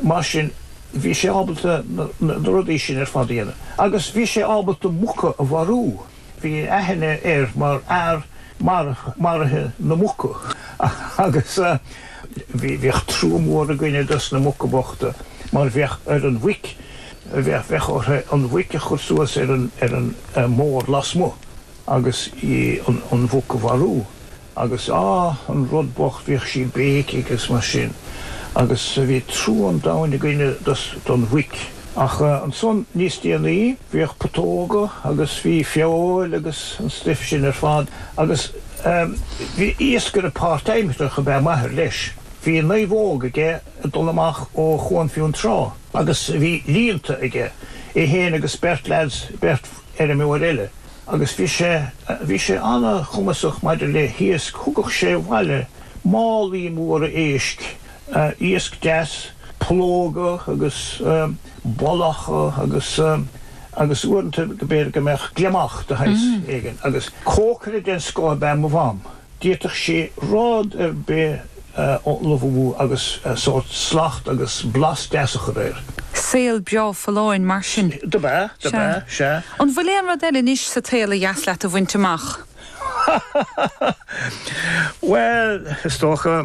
Mar sin, bhí sé ábalta na rudaí sin ar fad a dhéanamh. Agus bhí sé ábalta muca a mharú. Bhí aithne air mar fhear maraithe na muca. Agus bhíodh trua mór againne dos na muca bochta, mar bheadh ar an mhuic, bheadh orthu an mhuic a chur suas ar an mbord lasmuigh agus an mhuc a mharú. Agus, á, an rud bocht, bhíodh sí ag béicigh agus mar sin, agus bhí trua an domhain againne don mhuic. Ach ansan, níos déanaí, bhíodh putóga agus bhí feoil agus an stuif sin ar fad, agus, em, bhí iascaire páirtaimseartha ab ea m'athair, leis. Bhí naomhóg aige ag dul amach ó Chuan Fionntrá, agus bhí líonta aige, é fhéin agus beirt leaids, beirt. fheirmeoir eile, agus bhí sé bhí sé an-chumasach maidir le hiasc, thugadh sé abhaile málaí móra éisc, iasc deas, pollóga agus bollacha agus agus uaireanta go mb'fhéidir go mbeadh gliomach de shaghas éigin, agus cócaire den scoth ab ea mo mham. D'fhéadfadh sé rud ar bith a ullmhú agus sórt slacht agus blas deas a chur air. Saol beo folláin mar sin. Dob ea, dob ea, sea. An bhfuil aon rud eile anois sa tsaol ba dheas leat a bhaint amach? Ha ha ha ha! Bhuel, is dócha,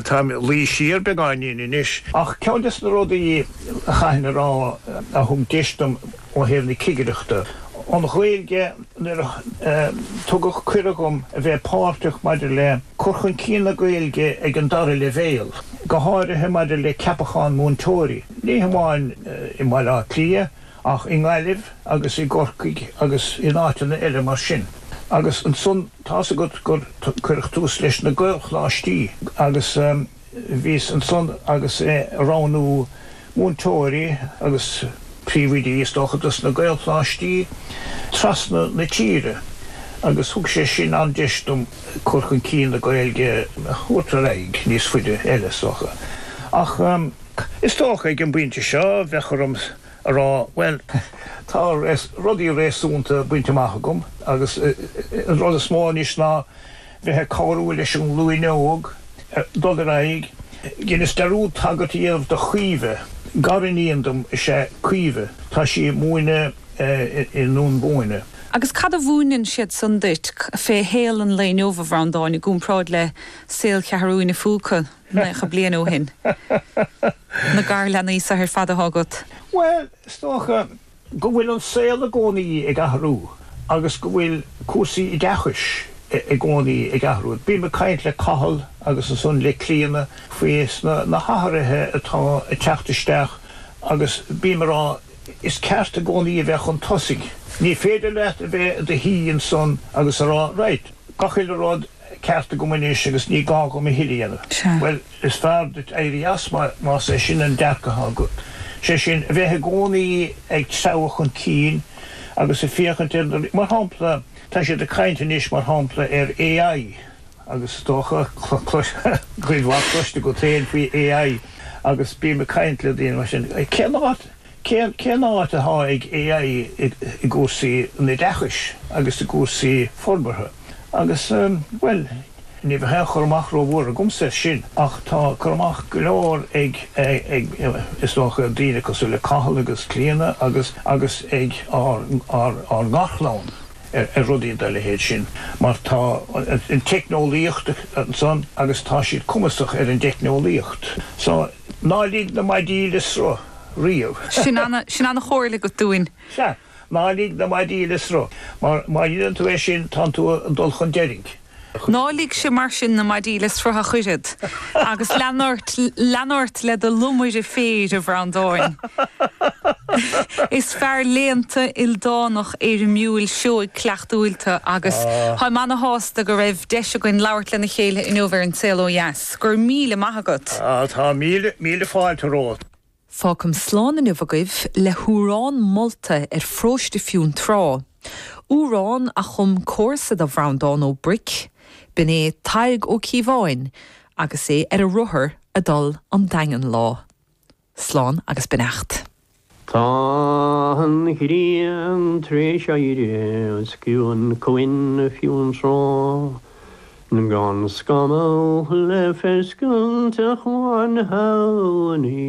táim ag luí siar beagáinín anois. Ach ceann des na rudaí a chaithfinn a rá a thug deis dom. ó thaobh na cigireachta. An Ghaeilge Nuair a tugadh cuireadh dhom a bheith páirteach maidir le cur chun cinn na Gaeilge ag an dara leibhéal, go háirithe maidir le ceapacháin múinteoirí, ní hamháin i mBaile Átha Cliath ach i nGaillimh agus i gCorcaigh agus in áiteanna eile mar sin, agus ansan tá's agat gur cuireadh tús leis na Gaelcholáistí agus. Bhíos ansan agus ag roghnú múinteoirí agus príomhoidí is dócha dos na Gaelcholáistí trasna na tíre agus thug sé sin an-deis dom cur chun cinn na Gaeilge a thabhairt ar aghaidh níos faide eile is dócha. Ach is dócha ag an bpointe seo bheadh orm a rá bhuel tá rudaí réasúnta bainte amach agam agus an rud is mó anois ná bheith ag cabhrú leis an nglúin óg dul ar aghaidh, dheinis dar ndóigh tagairt éigin do Chaoimhe, gariníon dom is ea Caoimhe, tá sí ag múineadh i nDún Búinne. Agus cad a mhúineann siad san duit fé shaol an lae inniu, a Bhreandáin, i gcúmpráid le saol Cheathrú an Phúca naocha bliain ó shin? Na garleanaí seo ar fad atá agat? Bhuel, is dócha. go bhfuil an saol i gcónaí ag athrú agus go bhfuil cúrsaí oideachais i gcónaí ag athrú. Bím ag caint le Cathal agus ansan le Clíodhna faoi na hathruithe atá ag teacht isteach agus bím ag rá Is ceart i gcónaí a bheith chun tosaigh. Ní féidir leat a bheith i do shuí ansan agus a rá Right, gach uile rud ceart agam anois agus ní gá dhom a thuilleadh a dhéanamh. Bhuel, is fearr duit éirí as, más é sin an dearcadh atá agat. Sé sin, a bheith i gcónaí ag treabhadh chun cinn agus ag féachaint ar na, mar shampla, tá siad ag caint anois, mar shampla, ar AI agus is dócha, cuid mhaith cloiste agat féin faoi AI agus bím ag caint le daoine mar sin. Cén áit, Cén áit atá ag AI i gcúrsaí an oideachais agus i gcúrsaí forbartha? Agus, bhuel, ní bheadh aon chur amach rómhór agamsa air sin, ach tá cur amach go leor ag, is dócha, daoine cosúil le Cathal agus Clíona agus agus ag ár ngarchlann ar rudaí dá leithéid sin, mar tá an teicneolaíocht ansan agus tá siad cumasach ar an dteicneolaíocht. So. Ná lig na maidí le sruth riamh. Sin an chomhairle agat dúinn. Sea, ná lig na maidí le sruth, mar má dhéanann tú é sin, tánn tú ag dul chun deiridh. Ná ligse mar sin na maidí le sruth ach oiread, agus lean ort, lean ort le do lomaire féir, a Bhreandáin. Is fear léannta, ildánach, éirimiúil, seoigh, cuileachtúil tú agus táim ana-shásta go raibh deis againn labhairt lena chéile inniu ar An Saol Ó Dheas. 'S go raibh míle maith agat! Tá míle míle fáilte romhat. Fágfam slán inniu agaibh le hamhrán molta ar pharóiste Fionntrá, amhrán a chum comharsa do Bhreandán Ó Bric, b'in é Tadhg Ó Cíobháin agus é ar a rothar a dul 'on Daingean lá. Slán agus beannacht. Tá an ghrian t'réis éirí 's ciúin Cuan Fionntrá Gan scamall le feiscint Ach amháin Shamhain í.